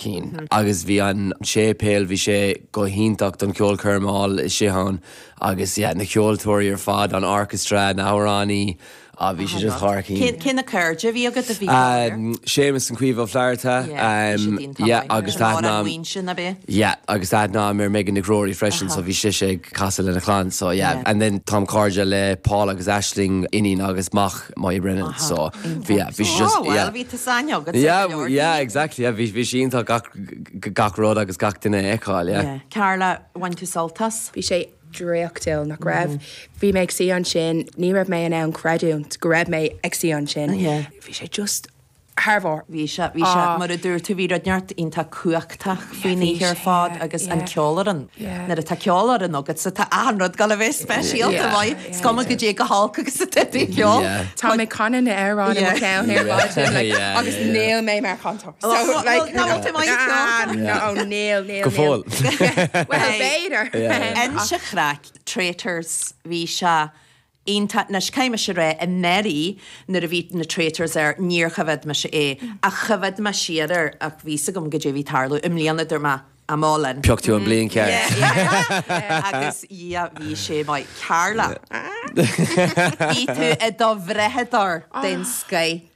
cinn. Agus bhí an séipéal, bhí sé go hiontach don cheolchoirm a fháil istigh ann. Agus yeah, na ceoltóirí ar fad, an orchestra, na hamhránaithe, ah bhí sé just thar cinn. Cé, cé na cairde a bhí agat a bhí um, Séamus and Caoimhe Uí Fhlatharta. Um, yeah, agus tá aithne. Sin na bit. Yeah, agus tá aithne agam ar Megan Nic Ruairí freisin, uh-huh. so bhí sise ag casadh lena clann. So yeah. yeah. And then táim cairde le Paul agus Aisling iníon agus mac Moya Brennan. So bhí bhí sé just yeah. Bhí tú san agad. Yeah, yeah, exactly. Yeah, bhí bhí sé iontach gach gach rud agus gach duine a fheiceáil, yeah. Yeah. Carla, bhain tú sult as? Bhí sé draíochtúil, nach raibh? Bhí mé ag suí ansin, ní raibh mé in ann creidiúint go raibh mé ag suí ansin. Bhí sé just thar barr. Bhí sé, bhí sé, mar a dúirt tú, bhí rud inteacht iontach cumhachtach faoin oíche ar fad agus an cheolfhoireann, nuair atá ceolfhoireann agatsa, tá achan rud ag gabháil a bheith speisialta, right? Is cuma goidé chomh holc agus a titfidh an ceol. Tá mé ag canadh na amhráin i mo cheann ar maidin like agus níl mé mar chantóir. So like, no, no, no, níl, níl. Go fóill. Well, b'fhéidir. Inse chraic, Traitors, bhí sé, iontach. Anois. Caithfidh mise a rá, anuraidh nuair a bhí na Traitors air, níor choimhead mise é. Ach choimhead mé siar air, ach bhí fhios agam goidé bhí tarlú. I mbliana, dúirt mé, I'm all in. Phioc tú an bliain ceart. Yeah, yeah. Agus, yeah, bhí sé maith. Carla, bhí tú i do bhrathadóir den scoith.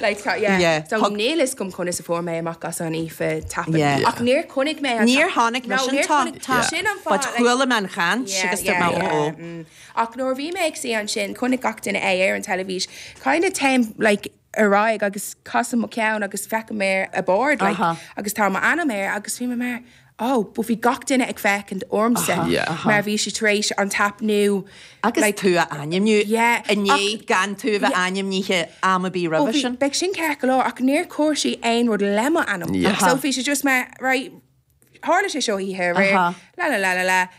Like tá, yeah. Yeah. So Thug- níl fhios agam conas a fuair mé amach as an Aoife tap. Yeah. Ach níor chonaic mé an Níor tap- tháinig No, mis an níor tá. chonaic- tá. Sin an fáth, But like- chuala me an chaint Yeah, agus yeah, yeah, oh. mm. Ach nuair a bhí mé ag suí ansin, chonaic gach duine é ar an teilifís. Kind of téim, like, ar aghaidh agus casaim mo ceann agus feicim mé ar a bord, like, Aha. agus tá m'ainm air agus bhí mé mar, Ó, but bhí gach duine ag féachaint ormsa mar bhí sé tar éis an tap nó Agus like, tú a ainmniú yeah, i ndiaidh ach, gan tú a bheith yeah, ainmnithe am ar bith roimhe sin. Beidh sin ceart go leor ach níor chuir sí aon rud le mo ainm. Yeah. So bhí sé just mar, right, tharla sé seo oíche aréir, la la la la la,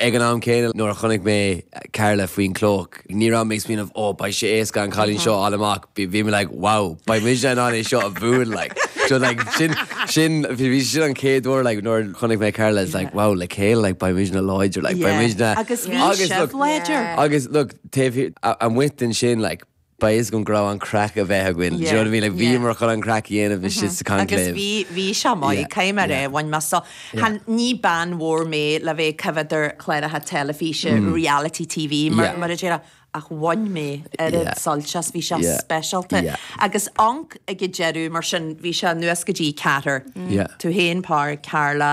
Ag an am céanna, nuair a chonaic mé Carla faoin cloak, ní raibh mé ag smaoineamh, 'Ó, beidh sé éasca an cailín seo a fháil amach', bhí mé, like, 'Wow, beidh muidne in ann é seo a bhuachan', like. So, like, sin, sin, bhí, sin an chéad uair, like, nuair a chonaic mé Carla, it's like, 'Wow, le chéile, like, beidh muidne láidir, like, beidh Yeah. muidne'. Agus bhí sibh láidir. Agus, look, taobh thiar, a- amuigh den sin, like, bhí fhios agam go raibh an craic a bheith againn do you know what I mean like bhíomar chun an craic a dhéanamh istigh sa conclave agus bhí bhí sé maith caithfidh mé a rá bhain mé so chan ní bean mhór mé le bheith ag coimhéad ar chláracha teilifíse reality TV mar mar a déarfá ach bhain mé an-sult as bhí sé speisialta agus anc ag an deireadh mar sin bhí sé anuas go dtí ceathrar tú fhéin Pádraig Carla